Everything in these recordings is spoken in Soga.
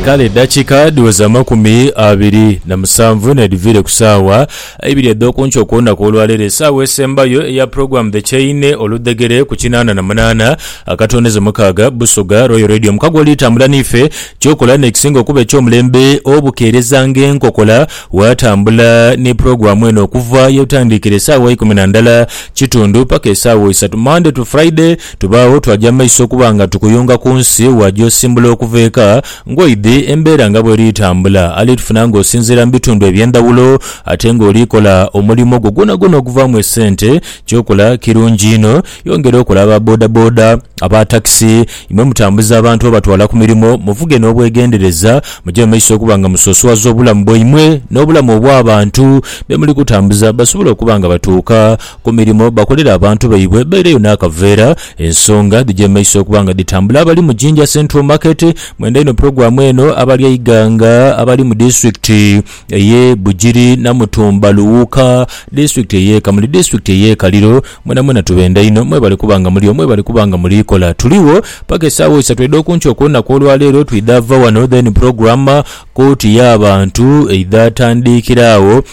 Kale eddakiika dhiweza amakumi abiri na musanvu n'edhiviire ku saawa ibiri edh'oku nkyo ku lunaku olwaleero, esaawa esembayo eya Program The Chain, oludhegere ku kinaana na munaana akatonezo mukaaga, Busoga Royal Radio. Mukago oli tambula n'ife, ky'okola n'ekisinga okuba eky'omulembe obukeereza ng'enkokola, waatambula ni pulogulaamu eno okuva ye tandikira esaawa ikumi na ndala kitundu paka esaawa isatu, Monday to Friday. Tubaagho twaja maiso okuba nga tukuyunga ku nsi, waja osimbula okuva eka ng'oidhi embeera nga bw'eri tambula. Ali tufuna ng'osinziira mu bitundu eby'endhawulo ate ng'oli kola omulimo gwo gwonagwona oguvaamu esente. Ky'okola kirungi inho. Yongera okole aba bodaboda, aba takisi, imwe mutambuza abantu obatwala ku mirimo, muvuge n'obwegendereza. Muje mu maiso okuba nga musosowaza obulamu bwaimwe n'obulamu obw'abantu be muli kutambuza basobole okuba nga batuuka Ku mirimo bakolera abantu baibwe baireyo n'akaveera. Ensonga dhija emaiso okuba nga dhitambula abali mu Jinja Central Market. Mwenda inho pulogulaamu eno abali eighanga abali mu disitulikiti ey'e Bugiri, Namutumba, Luwuuka, disitulikiti ey'e Kamuli, disitulikiti ey'e Kaliro, mwenamwena tubenda inho. Mwebale kuba nga muliyo, mwebale kuba nga muliikola. Tuligho paka esaawa isatu edh'okunkyo okw'olunaku olwa leero. Twidhaava ghano then pulogulaamu kkooti y'abantu eidha tandiikira agho.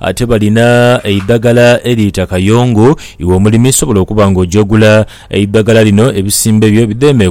Ate balina eidhagala eriita kayongo, iwe omulimi sobola okuba nga oja ogula eidhagala lino ebisimbe byo bidheeme